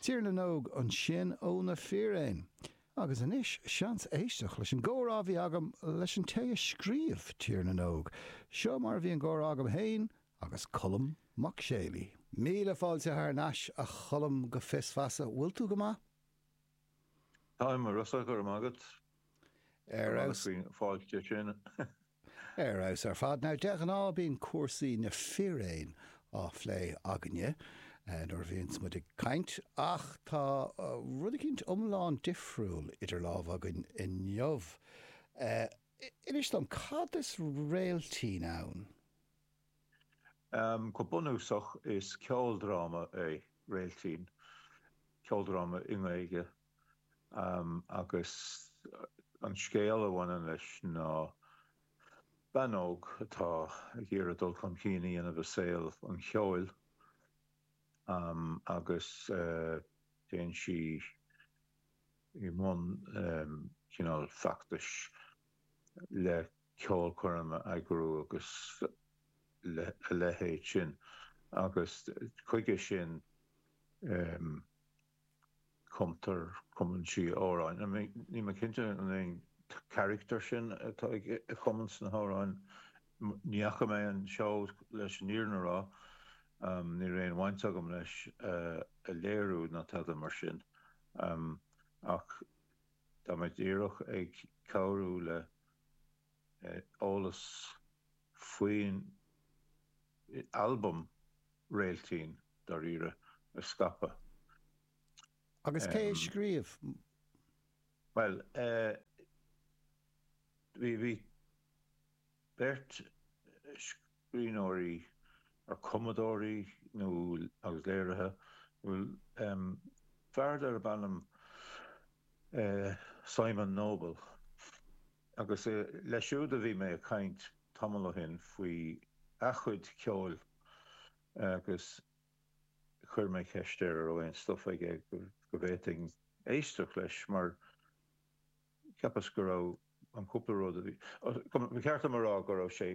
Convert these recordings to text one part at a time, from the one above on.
Tír na nÓg ansin ó na Fíréin. Agus anois seans éisteacht leis an gcomhrá a bhí agam leis an té a scríobh Tír na nÓg. Seo mar a bhí an comhrá agam fhéin agus Colm Mac Séalaigh. Míle fáilte thar n-ais a Choilm go Fios Feasa, bhfuil tú go maith? Táim, a Rossa, go raibh maith agat. Fáilte. Ar fheabhas ar fad. Now de ghnáth bíonn cúrsaí na Fíréin á phlé againne nuair a bhíonns muid ag caint ach tá rud eicínt iomlán difriúil idir lámha againn inniu. Inis dom, cad is Réiltín ann? Go bunúsach is ceoldráma é Réiltín. Ceoldráma i nGaeilge. agus an scéal a bhaineann leis ná bean óg atá ag iarraidh dul chun cinn a dhéanamh i saol an cheoil agus téann sí i mbun cineál feachtais le ceolchoirm a eagrú agus a leithéid sin agus chuige sin. cumtar cumann sí amhráin. Níl mé cinnte an é an caractar sin atá ag cumadh na n-amhrán. Ní fhaca mé an seó leis an fhírinne a rá. Ní raibh aon bhaint agam leis an léiriú ná tada mar sin. Ach tá mé díreach ag cabhrú le eolas. faoin albam Réiltín, dáiríre, a scaipeadh. Agus cé a scríobh? Bhuel, bhí beirt scríbhneoirí, or cumadóirí nó, agus léiritheoir, fear darb ainm Simon Noble, Agus leis siúd a bhí mé ag caint tamall ó shin faoi a chuid ceoil agus chuir mé ceist air a' raibh aon stuif aige go bhféadfainn éisteacht leis mar cheapas go raibh an cúpla rud a bhí, ba cheart dom a rá go raibh sé,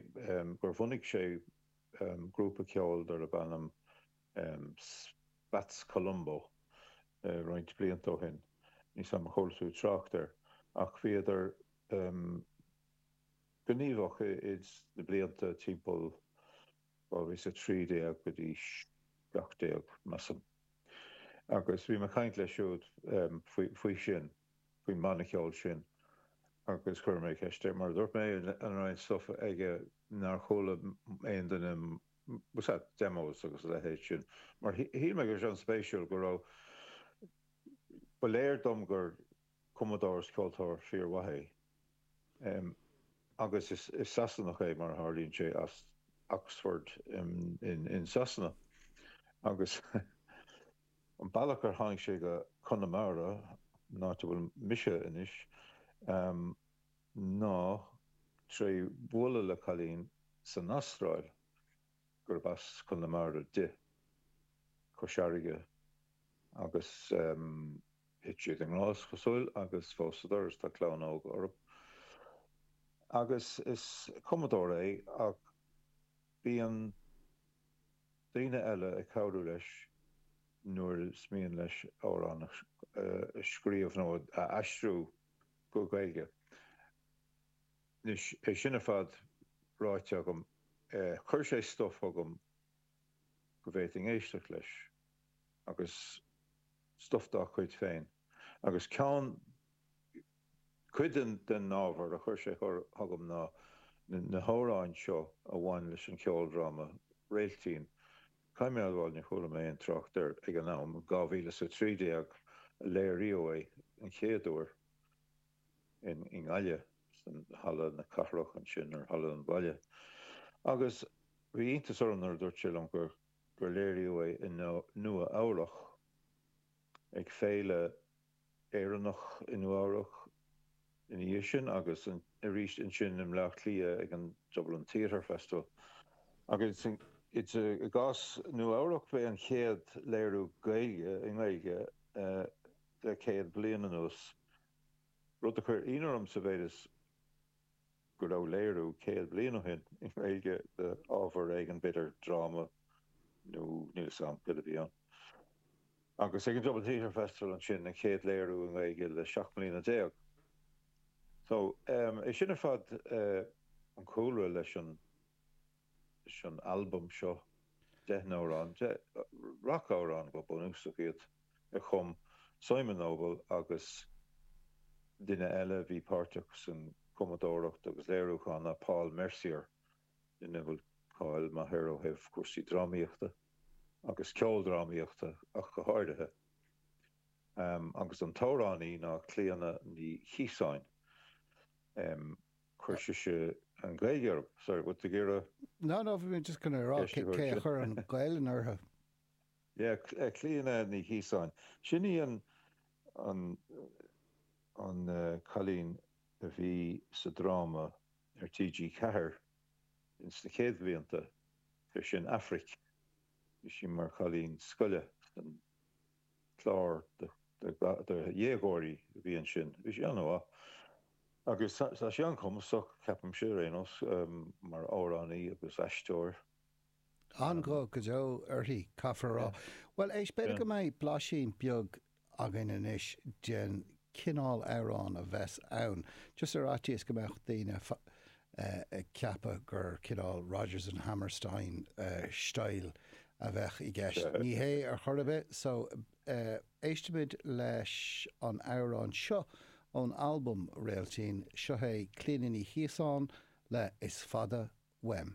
gur bhunaigh sé grúpa ceoil darb ainm. Spats Colombo roinnt blianta ó shin, níl a fhios agam ar chuala tú trácht air, ach bhíodar gníomhach sna blianta timpeall 2013 go dtí 17, measaim, agus bhí mé ag caint leis siúd faoi sin, faoin mbanna ceoil sin, agus chuir mé ceist air, mar a dúirt mé, an raibh aon stuif aige nár chuala aon duine demos agus a leithéid sin. Mar shíl mé go raibh sé an-spéisiúil go raibh, ba léir dom gur cumadóir is ceoltóir fíormhaith é. Agus is Sasanach é mar a tharlaíonn sé as Oxford in Sasana. Agus an bealach ar tháinig sé go Conamara, an áit a bhfuil mise anois, ná tré bualadh le cailín san Astráil gurb as Conamara di. Cois Fharraige agus thit siad i ngrá is cosúil agus phósadar is tá clann óg orthu. Agus is cumadóir é ach bíonn daoine eile ag cabhrú leis nuair is mian leis amhrán a scríobh nó a aistriú. go Gaeilge. Anois, é sin ar fad ráite agam, chuir sé stuif chugam go bhféadfainn éisteacht leis, agus stuif dá chuid féin. Agus ceann, cuid den ábhar a chuir sé chugam ná na hamhráin seo a bhain leis an cheoldráma Réiltín. Caithfidh mé a admháil ní chuala mé aon trácht air ag an am. 2000 is 13 a léiríodh é an chéad uair i nGaillimh, san Halla na Cathrach ansin, nó Halla an Bhaile. Agus bhí iontas orm nuair a dúirt sé liom gur léiríodh é i Nua Eabhrach ag Féile. Éireannach i Nua-Eabhrac ina dhiaidh sin agus arís ansin i mBleá Cliath ag an Dublin Theatre Festival. Agus i gcás Nua-Eabhrac, b'é an chéad léiriú Gaeilge i nGaeilge le céad bliain anuas, rud a chuir ionadh orm sa mhéid is, go raibh léiriú céad bliain ó shin i nGaeilge d'ábhar éigin, b'fhéidir dráma nó níl 'fhios a'm céard a bhí ann. Agus ag an Dublin Theatre Festival ansin an chéad léiriú i nGaeilge le seacht mbliana déag. So, eh, é sin ar fad eh an cúlra leis an. leis an albam seo deich n-amhrán, deich rac-amhrán go bunúsach iad, a chum Simon Noble agus duine eile a bhí páirteach san cumadóireacht agus léiriúchán ná Paul Mercier, duine a bhfuil cáil maith air ó thaobh cúrsaí drámaíochta agus ceoldrámaíochta ach go háirithe. Agus an t-amhránaí ná Clíona Ní Chiosáin. Chuir sise an Ghaeilge orm. Sorry, what did you get a. No, no, bhí mé just going to rá cé a chuir an Ghaelainn orthu. Yeah, Cl- eh, Clíona Ní Chíosáin. Sin í an, an, an eh, cailín a bhí sa dráma ar TG Ceathair ins na céad bhlianta, bhí sí in Aifric, bhí sí mar chailín scoile san, clár do dhéagóirí a bhí ansin. Bhí sé an-mhaith. Agus tá sí an-chumasach, ceapaimse, ar aon nós, mar amhránaí agus aisteoir. An-ghuth go deo aici, caithfear a rá. Bhuel, éist, b'fhéidir go mbeidh blaisín beag againn anois den chineál amhráin a bheas ann, just ar fhaitíos go mbeadh daoine ag ceapadh gur cineál Rodgers and Hammerstein style a bheidh i gceist. Ní hé ar chor ar bith. So, éistimid leis an amhrán seo ón albam Réiltín. Seo í Clíona Ní Chíosáin le Is Fada Uaim.